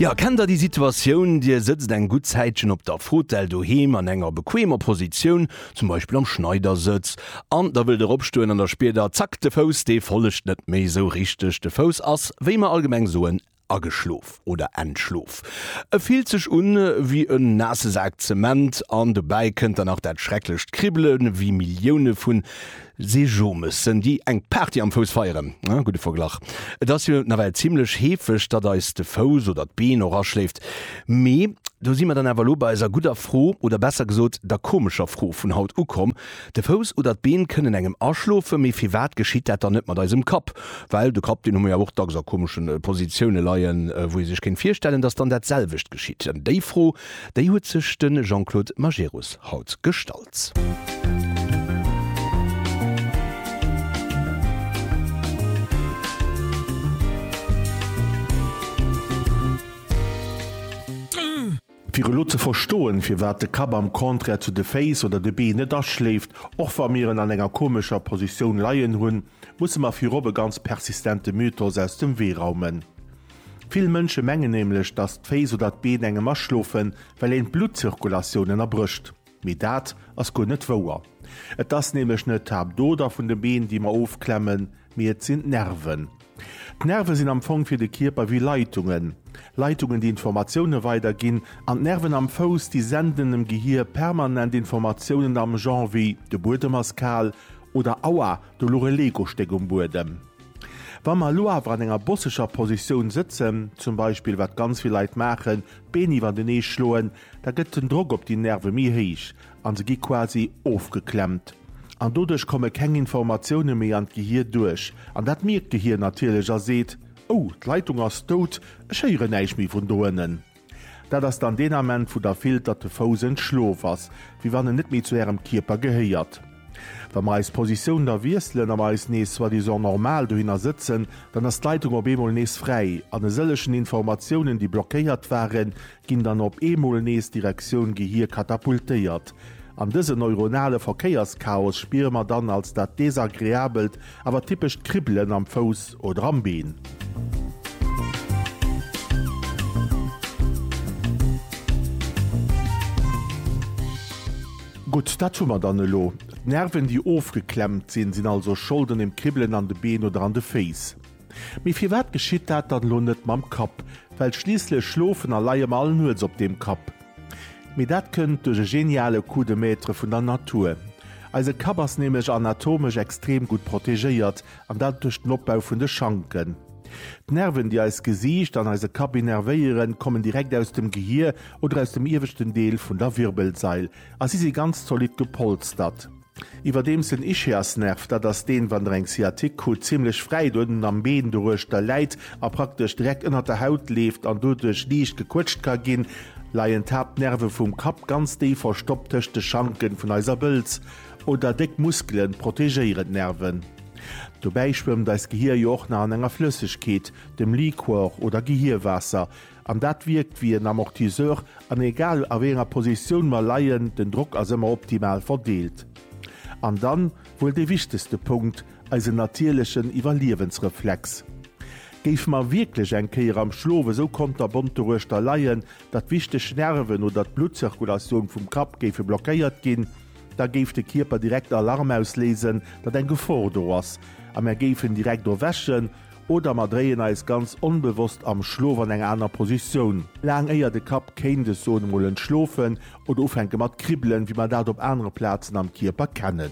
Jo, kennt der déi Situatioun, Dir sëtzt eng gutt Zäitchen op der Fotell doheem an enger bequemer Positioun, zum Beispill am Schneidersëtz, an da wëllt Der opstoen an da spiert Der, zack, de Fouss dee follegt net méi esou richteg. De Fouss ass, wéi mer allgemeng soen, ageschlof oder entschlof. E fillt sech un ewéi en naasse Sak Zement an dobäi kënnt dann nach dat schrecklecht Kribbelen, wéi Millioune vu Seejomëssen, déi eng Party am Fouss feieren, ah, gudde Verglach. Et ass jo nawell zimmlech heefeg, datt eis de Fouss oder d'Been och aschléift. Mee do si mer dann awer elo bei eiser gudder Fro, oder besser gesot der komescher Fro vun haut ukomm, De Fouss oder d'Been kënnen engem aschlofen, mee firwat geschitt dat dann net mat eisem Kapp? Well de Kapp, deen hu mer jo och dacks a komesche Positioune leien, wou ee sech kéint virstellen, datt dann dat selwecht geschitt. Déi Fro, déi huet sech de Jean-Claude Majerus haut gestallt. Gesetz. Fir elo ze verstoen, firwat de Kapp am Contraire zu de Féiss oder de Been net aschléift, och wa mir en an enger komescher Positioun leien hunn, musse mer virop e ganz persistente Mythos aus dem Wee raumen. Vill Mënsche mengen nämlech, dass d'Féiss oder d'Been engem aschlofen, well een d'Bluttzirkulatioun ënnerbrécht. Mee dat ass guer net wouer. Et ass nämlech net d'Haaptoder vun de Been, déi mer ofklemmen, mee et sinn d'Nerven. D'Nerve sinn am Fong fir de Kierper wéi Leitungen. Leitungen, déi Informatioune weiderginn an d'Nerven am Fouss, déi senden dem Gehier permanent Informatiounen am Genre wéi de Buedem ass kal oder Aua, do luch e Lego-Stéck um Buedem. Wa mer elo awer an enger bosseger Positioun sëtzen, zum Beispill wat ganz vill Leit maachen, d'Been iwwertenee schloen, Da gëtt den Drock op déi Nerve méi héich a se gi quasi ofgeklemmt. An doduerch komme keng Informatioune méi an d'Gehir duerch. An dat mierkt d'Gehir natierlech a seet, Oh, d'Leitung ass dout, ech héieren näischt méi vun do ënnen. Dat ass dann deen Ament, wou Der fillt, datt de Fouss entschlof ass, wéi wann en net méi zu Ärem Kierper gehéiert. Wa mer eis Positioun da wiesselen a mer eis nees soi-disant normal dohinner sëtzen, dann ass d'Leitung op eemol nees fräi an e sëllechen Informatiounen, déi blockéiert waren, ginn dann op eemol nees Direktioun Gehir katapultéiert. An dëse neuronale Verkéierschaos spiere mer dann als dat desagreabelt, awer typescht Kribbelen am Fouss oder am Been. Gutt, dat hu mer dann elo. D'Nerven, déi ofgeklemmt sinn, sinn also schold un dem Kribbelen an de Been oder an de Féiss. Mee firwat geschitt dat dann elo net mam Kapp? Well schliisslech schlofen a leie mer all nuets op deem Kapp. Mee dat kënnt duerch e geniale Coup de Maître vun der Natur. Eise Kapp ass nämlech anatomesch extrem gutt protegéiert, an dat duerch den Opbau vun de Schanken. D'Nerven, déi eist Gesiicht an eise Kapp innervéieren, kommen direkt aus dem Gehier oder aus dem ieweschten Deel vun der Wirbelsail a si si ganz zolidd gepolstert. Iwwerdeems den Ischiasnerv, dat ass deen, wann der eng Sciatique krut, zimmlech fräit uewen am Been doruechter läit a praktesch direkt ënnert der Haut leeft an doduerch liicht gequëtscht ka ginn, leien d'Haaptnerve vum Kapp ganz déif verstoppt tëscht de Schanken vun eiser Bëlz oder déck Muskelen protegéieren d'Nerven. Dobäi schwëmmt eist Gehier jo och nach an enger Flëssegkeet, dem Liquor oder Gehierwaasser, An dat wierkt wéi en Amortisseur an egal a wéi enger Positioun mer leien, den Drock ass ëmmer optimal verdeelt. An dann wuel dee wichtegste Punkt, eisen natierlechen Iwwerliewensreflex. Géife mer wierklech eng Kéier am Schlof esou konterbont doruechter leien, datt wichteg Nerven oder d'Bluttzirkulatioun vum Kapp géife blockéiert ginn, da géif de Kierper direkt Alarm ausléisen, datt eng Gefor do ass a mer géifen direkt erwächen. Oder mer dréien eis ganz onbewosst am Schlof an eng aner Positioun, laang éier de Kapp kéint, ech soen emol, entschlofen oder ufänke mat kribbelen, wéi mer dat op anere Plazen am Kierper kennen.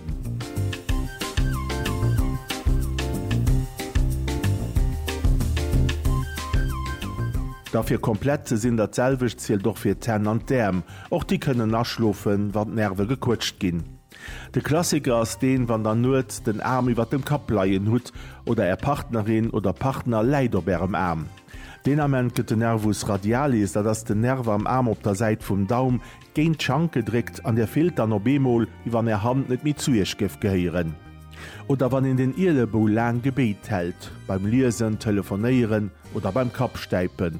Da fir komplett ze sinn, dat selwecht zielt och fir d'Hänn an d'Äerm, och déi kënnen aschlofen, wann d'Nerve gequëtscht ginn. De Klassiker ass deen, wann der nuets den Aarm iwwert dem Kapp leien hutt oder är Partnerin oder Partner läit op ärem Aarm. Deen Ament gëtt de Nervus radialis, dat ass den Nerv am Aarm op der Säit vum Daum, géint d'Schank gedréckt an dir fillt dann op eemol, wéi wann är Hand net méi zu iech géif gehéieren. Oder wann een den Ielebou laang gebéit hält, beim Liesen, Telefonéieren oder beim Kappstäipen.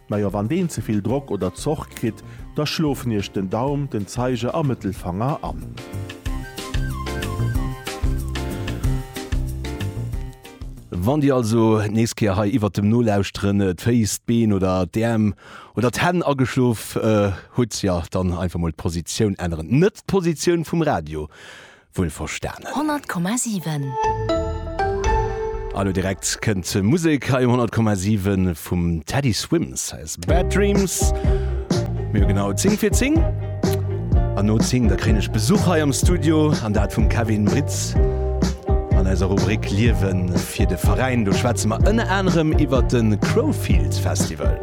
Najo, wann deen ze vill Drock oder Zorg kritt, da schlofen iech den Daum, den Zeiger a Mëttelfanger an. Wann dir also nees Kéier hei iwwert dem Nolauschteren d'Féiss, d'Been oder d'Äerm oder d'Hänn ageschlof hutt, ja dann einfach mol d'Positioun änneren. Net d'Positioun vum Radio, wuel verstanen. 100,7. A lo direkt kënnt Musek hei um 100,7 vum Teddy Swims. Hei ass Bad Dreams. Mir hu genau 10 fir 10. An no 10 da kréien ech Besuch hei am Studio an dat vum Kevin Britz. An eiser Rubrik Liewen fir de Veräin do schwätze mer ënner anerem iwwert de Crowfield Festival.